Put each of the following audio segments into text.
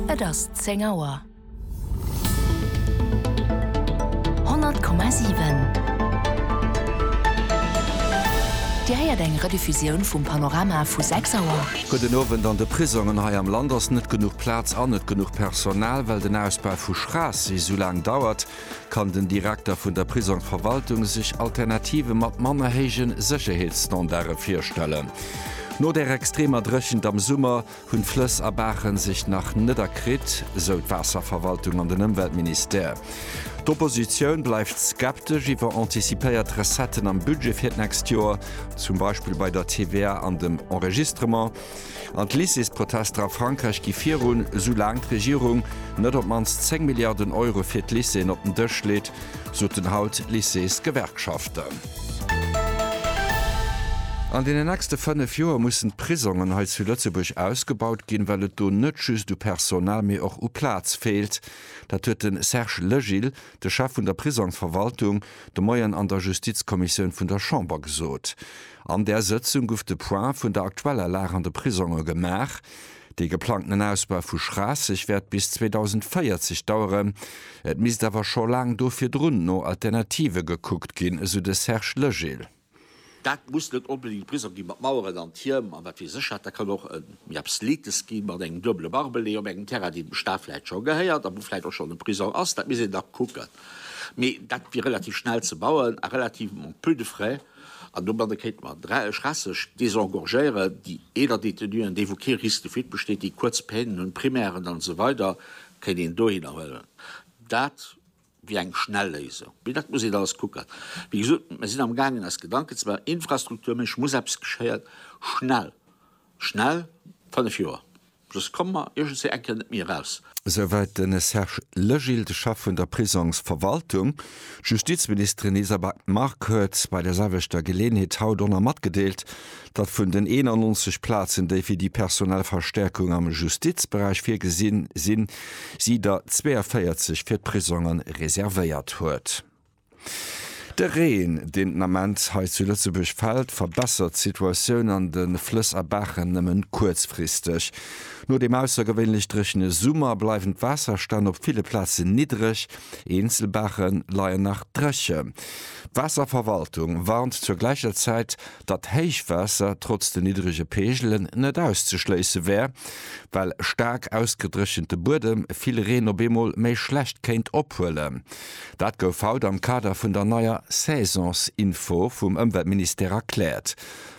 Et ass zéng Auer. Honnert Komma siwen. Dir héiert eng Rediffusioun vum Panorama vu sechs Auer. Gudden Owend. An de Prisongen hei am Land ass net genuch Plaz an net genuch Personal, well den Ausbau vu Schraassee sou laang dauert. Kann den Direkter vun der Prisongverwaltung sech Alternative mat manner héije Sécherheetsstandarde virstellen? No der extremer Dréchent am Summer hunn d'Flëss a Baachen sech nach net erkritt, sou d'Waasserverwaltung an den Ëmweltministère. D'Oppositioun bleift skeptesch iwwer antizipéiert Recetten am Budget fir d'nächst Joer, zum Beispill bei der TVA an dem Enregistrement. An d'Lycéesprotester a Frankräich gi virun, esou laang d'Regierung net op d'mannst 10 Milliarden Euro fir d'Lycéeën op den Dësch leet, soten haut d'Lycéesgewerkschaften. An deenen nächste 5 Joer mussen d'Prisongen hei zu Lëtzebuerg ausgebaut ginn, well et do net just u Personal, mee och u Plaz feelt. Dat huet de Serge Legil, de Chef vun der Prisongsverwaltung, de Moien an der Justizkommissioun vun der Chamber gesot. An där Sëtzung gouf de Point vun der aktueller Lag an de Prisonge gemaach. Dee geplangten Ausbau vu Schraasseg wäert bis 2040 daueren. Et misst awer scho laang do virdrun no Alternative gekuckt ginn, esou de Serge Legil. Dat muss net onbedéngt e Prisong gi mat Maueren an Tierm an wat weess ech wat. Dat kann och e méi absletes gi mat engem duebele Barbelé op engem Terrain, deen dem Staat vläicht scho gehéiert a wou vläicht och schonn e Prisong ass. Dat misst een da kucken. Mee dat wier relativ schnell ze bauen a relativement peu de frais. An domadde kéinte mer d'Recherche désengorgéieren, déi eeler Détenuen, déi wou kee Risque de fuite besteet, déi kuerz Peinen hunn, Primären an esou weider, kéint een dohinner huelen. Dat wier eng schnell Léisung. Mee dat muss een alles kucken. Wéi gesot, mir sinn am gaangen eis Gedanken ze maachen, infrastrukturméisseg muss eppes geschéien, schnell, schnell, fënnef Joer. Just komme mer iergendswéi eng Kéier net méi eraus. Esou wäit de Serge Legil, de Chef vun der Prisongsverwaltung. D'Justizministerin Lisa Back-Mark huet bei der selwechter Geleeënheet haut och nach matgedeelt, datt vun den 91 Plazen, déi fir déi personell Verstäerkung am Justizberäich virgesinn sinn, si der 42 fir d'Prisonge reservéiert huet. De Reen, deen den Ament hei zu Lëtzebuerg fält, verbessert d'Situatioun an de Flëss a Baachen nëmme kuerzfristeg. No deem aussergewéinlech dréchene Summer bleiwen d'Waasserstänn op ville Plazen niddreg, eenzel Baache leien nach dréchen. D'Waasserverwaltung warnt zur gläicher Zäit, datt Héichwaasser trotz den niddrege Peegelen net auszeschléisse wär, well staark ausgedréchente Buedem vill Reen op eemol méi schlecht kéint ophuelen. Dat gouf haut am Kader vun der neier Saisonsinfo vum Ëmweltministère erkläert.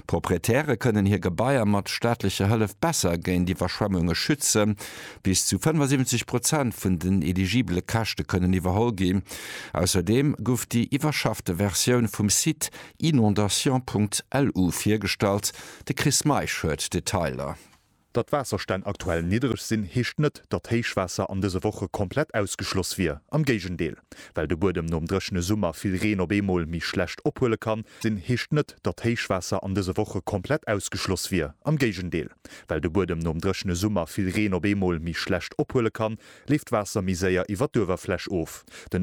Proprietäre kënnen hir Gebaier mat staatlecher Hëllef besser géint Iwwerschwemmunge schützen. Bis zu 75 Prozent vun den eligibele Käschte kënnen iwwerholl ginn. Ausserdeem gouf déi iwwerschaffte Versioun vum Site inondations.lu virgestallt. De Chris Meisch huet d'Detailer. Datt d'Waasserstänn aktuell niddereg sinn, heescht net, datt Héichwaasser an dëse Woche komplett ausgeschloss wier. Am Géigendeel. Well de Buedem nom dréchene Summer vill Reen op eemol méi schlecht ophuele kann, sinn, heescht net, datt Héichwaasser an dëse Woche komplett ausgeschloss wier. Am Géigendeel. Well de Buedem nom dréchene Summer vill Reen op eemol méi schlecht ophuele kann, leeft d'Waasser méi séier iwwer d'Uewerfläch of. Den.